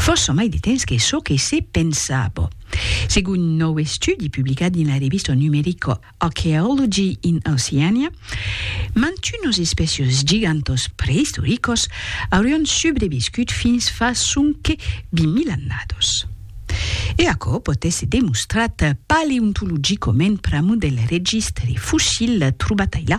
Fòrça mai de temps que çò que se pensava. Segon un nòu estudi publicat dins la revista numerica Archaeology in Oceania, mantunos espècios gigantòs preistoricos aurián subreviscut fins fa sonque 20.000 annados. E aquò pòt èsser demostrat paleontologicament pr'amor del registre fossil trobat ailà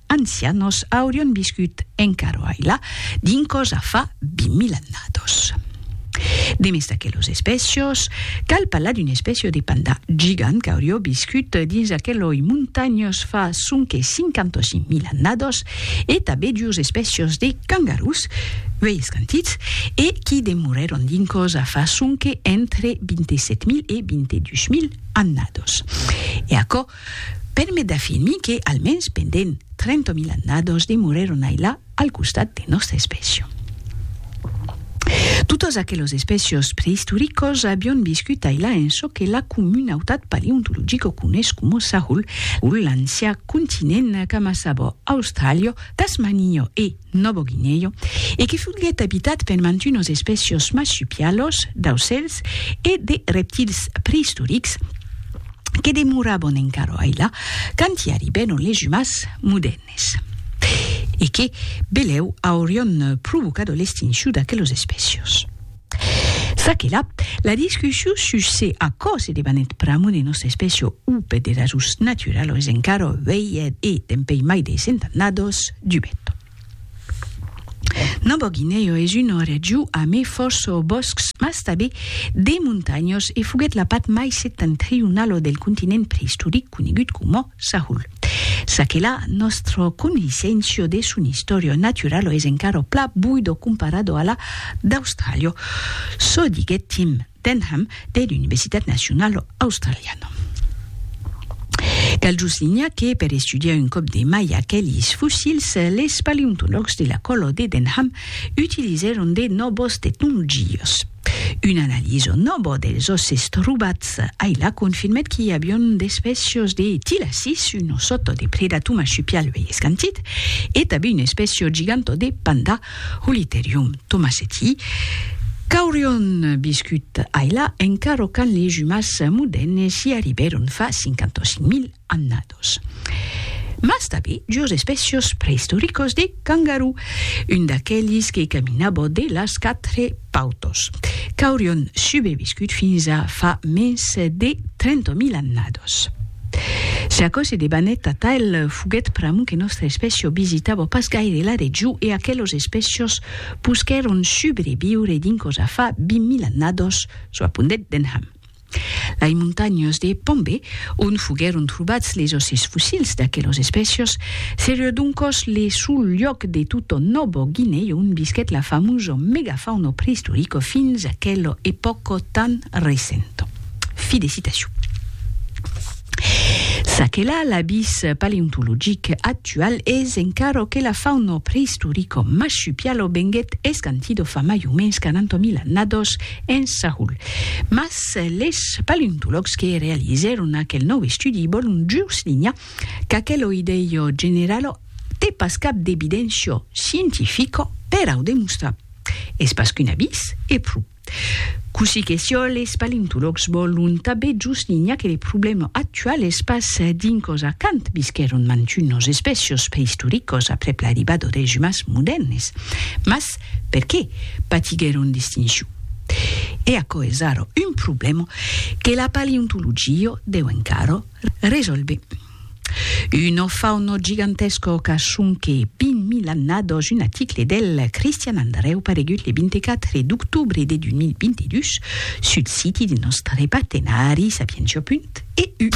ancianos aurion viscut encara ailà dins còsa fa 20.000 annados. Demest d'aquelos espècios, cal parlar d'un espècio de pandà gigant qu'aurió viscut dins aqueloi montanhos fa sonque 55.000 annados e tabé duos espècios de cangarús uèi escantits e qui demorèron dins còsa fa sonque entre 27.000 e 22.000 annados. E aquò permet d'afirmir que, almens pendent 30.000 annados, demorèron ailà al costat de nòsta espècia. Totes aqueles espècias preistoricas avián viscut ailà en çò que la comunautat paleontologica coneis coma Sahul, l'ancian continent qu'amassava Austràlia, Tasmania e, Novo Guinèu, e que foguèt abitat per mantunos espècios marsupialos, d'aucèls e de reptils preistorics que demorabon encara ailà quand i arribèron les umans modèrnes e que, belèu, aurion provocado l'extincion d'aquelos espècios. Çaquelà, la discussion sus se aquò se debanèt pr'amor de nòsta espècia o per de rasons naturalos es encara uèlha e, dempèi mai de cent annados, dubèt. Nòva Guinèa es una region amé fòrça bòscs mas tabé de montanhas e foguèt la part mai septentrionala del continent preistoric conegut coma Sahul. Ça que la nòstra coneissencio de son istòria naturalo es encara pla buido comparado a la d'Austràlia, çò diguèt Tim Denham de l'Universitat Nacionalo Australiano. Cal just linhar que per estudiar un còp de mai aquelis fossils, les paleontològs de la còlo de Denham utilizèron de nòvos tecnologias. Una analiso nòva dels òsses trobats ailà confirmèt qu'i avion d'espècios de tilacis, un ossòto de predator marsupial uèi escantit, e tanben un espècio giganta de panda, Holiterium thomaseti, qu'aurion viscut ailà encara quand les umans modèrnes i arribèron fa 55.000 annadas. Galápagos. Mas tanben jos espècios preistoricos de cangarú, un d'aquelis que caminava de las quatre pautos, qu'aurion subeviscut fins a fa mens de 30.000 annadas. Se aquò se debanèt atal foguèt pr'amor que nòstra espècia visitava pas gaire la region e aquelos espècios posquèron subreviure dinc cosa fa 20.000 annadas, çò apondèt Denham. Lai montanhas de Pombé, ont foguèron trobats les òsses fossils d'aquelas espècias, seriá doncas le sol lloc de tota Nòva Guinèa ont visquèt la famosa megafauna preistorica fins aquela epòca tan recenta. Fi de citacion. Ça que la, l'abís paleontologic actual es encara que la fauna preistorica marsupiala venguèt escantida fa mai o mens 40.000 annadas en Saül. Mas les paleontològs que realizèron aquel nòu estudi vòlon just linhar qu'aquelo idèio generalo te pas cap d'evidéncia scientifica per au demostrar. Es pas qu'un avís, e pro. Cossí que siá, les paleontològs vòlon tabé just linhar que le problèma actual es pas dins cosa quand visquèron mantunos espècios preistoricos aprèp l'arribada des umans modèrnes, mas perqué patiguèron d'extincion. E aquò es ara un problèma que la paleontologia deu encara resòlver. Una fauna gigantesca qu'a sonque 20.000 annadas un aticle del Christian Andreu paregut le 24 d'octobre de 2022 sul siti de nòstre partenari Sapientia. EU.